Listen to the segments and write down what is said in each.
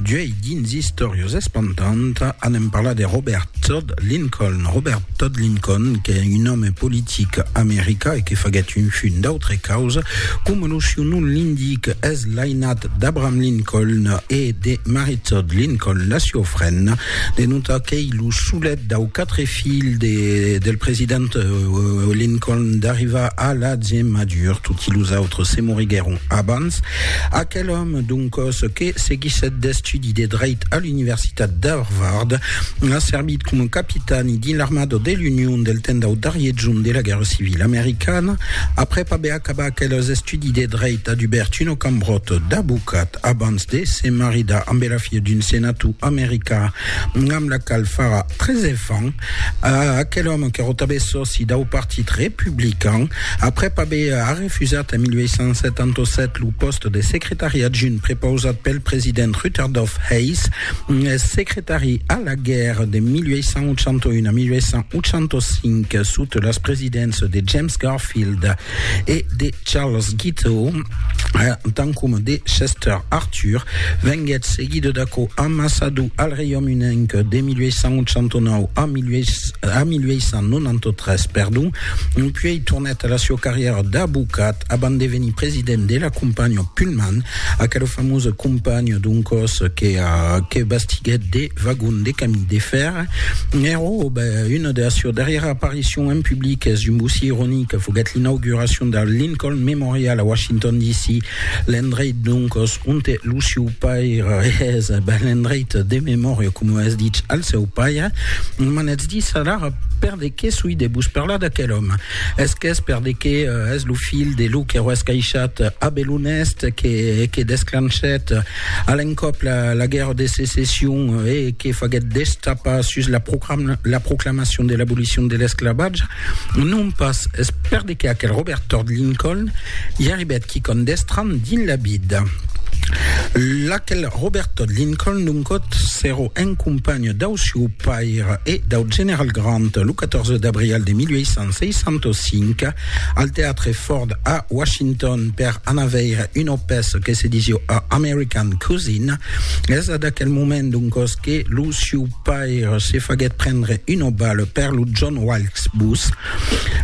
D'uei dins Istòrios Espantant anem parlar de Robert Todd Lincoln. Robert Todd Lincoln, que un òme politic americà e que faguèt un chun d'autre causa, coma lo siu nom l'indic, es l'ainat d'Abraham Lincoln e de Mary Todd Lincoln, la siu frena, De non tà qu'ei lo solet dau quatre filh del president Lincoln d'arrivar a la gemadure, toti los autres se moriguèron abans. Aquel òme, d'un còs que seguissèt d'estudi de dreit a l'Universitat d'Harvard, a servit coma capitani dins l'armada de l'Union del temps dau darrier jorn de la Guèrra Civila Americana, aprèp aver Abac los estudis de dreit a Dubertino Cambrot d'abocat abans de se maridar ambe la filha d'un senator americà amb la qual farà tres enfants. Aquel òme qu'èra tanben sòci dau partit republican aprèp aver arrefusat en 1877 lo pòste de secretari adjunt prepausat pel president Rutherdof Hayes, secretari a la guèrra de 1881 a 1885 sota las presidéncias de James Garfield e de Charles Guiteau, eh, tant coma de Chester Arthur, venguèt seguida d'aquò amassador al Reiaume Unenc de 1889 a 1893, perdon, puèi tornèt a la siua carrièra d'abocat abans de venir president de la companhiá Pullman, aquela famosa companhiá d'un còs que, que bastiguèt de vagons de camin de fèrre. Nero, ben, una de las seues darrièras aparicions en public es un bocí ironic, foguèt l'inauguracion del Lincoln Memorial a Washington DC, l'endreit d'un còs onte lo siu paire es, ben, l'endreit de memòria, coma es dich, al seu paire. M'anètz dir alara per de qué soi de vos parlar d'aquel òme. Es qu'es per de que es lo filh de lo que roes caishat Abel Honest que, que desclanchèt a l'encòp la, la guèrra de secession e que faguèt destapar sus la, proclam, la proclamacion de l'abolicion de l'esclavatge. Non pas, es per de que aquel Robert Todd Lincoln i arribèt quicòm d'estranh dins la vida. L'aquel Robert Todd Lincoln, d'un còt, s'èro un companh dau sieu Pair e dau general Grant lo 14 d'abrial de 1865 al teatre Ford a Washington per anar veire una pèça que se disiu A American Cousin. Es ad aquel moment doncos que lo siu pair se faguèt prendre una bala per lo John Wilkes Booth.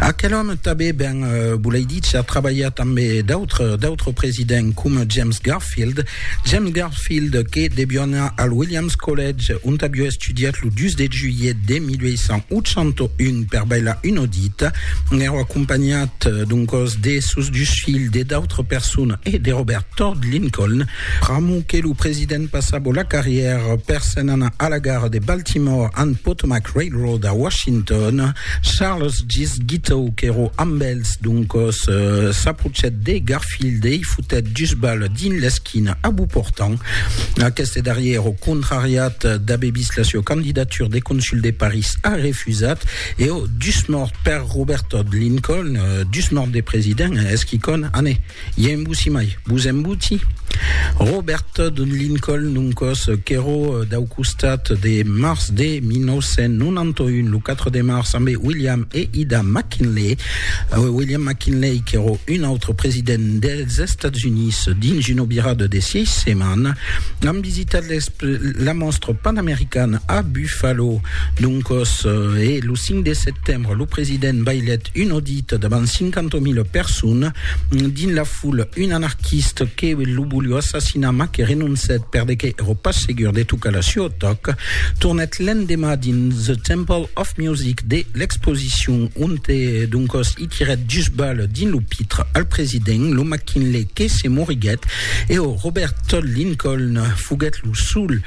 Aquel òme tabé ben, volei dícher, trabalhar tanbé d'autres d'autres presidents coma James Garfield, James Garfield, que devió anar al Williams College, ont avió estudiat lo 2 de julhet de 1881 per bailar un audit, n'èra acompanhat d'un còs de sos dus filhs, de d'autres personas e de Robert Todd Lincoln. Pr'amor que lo president passava la carrièra per se'n anar a la gara de Baltimore and Potomac Railroad a Washington, Charles Gist Guiteau, qu'èra amb els d'un còs, s'aprochèt de Garfield. Fildei fotèt dus bales dins l'esquina a Beauportan. Aqueste darrièr, au contrariat d'aver vist la sua candidatura de consul de París, a refusat e au dus mòrt per Robert Todd Lincoln, dus mòrt de president, es quicòm, ane, i a embussi mai, vos embuti? Robert Todd Lincoln, un còs qu'èro dau costat de març de 1991, lo 4 de març, ambe William e Ida McKinley, William McKinley, qu'èro un autre president dels Estats Units, dins una virada de sièis setmanas, an visitat la Mòstra Panamericana a Buffalo. Doncòs, e lo 5 de setembre, lo president bailèt un audit davant 50.000 personas. Dins la foula, un anarquist que lo volió assassinar mas que renoncèt perdeque èro pas segur de tocar la sua tòca, tornèt l'endemà dins The Temple Of Music de l'exposicion, onte doncòs i tirèt dus balhs dins lo pitre al president, lo McKinley que se moriguèt e o Robert Todd Lincoln foguèt lo sol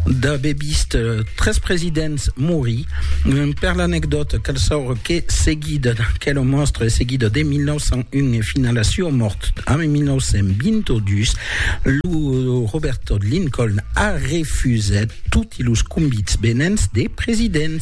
d'aver vist tres presidents morir. Per l'anecdòta, cal saure que seguida d'aquela mòstra e seguida de 1901 e fins a la sua mòrt en 1922, lo Robert Todd Lincoln a refusèt toti los convits venents de presidents.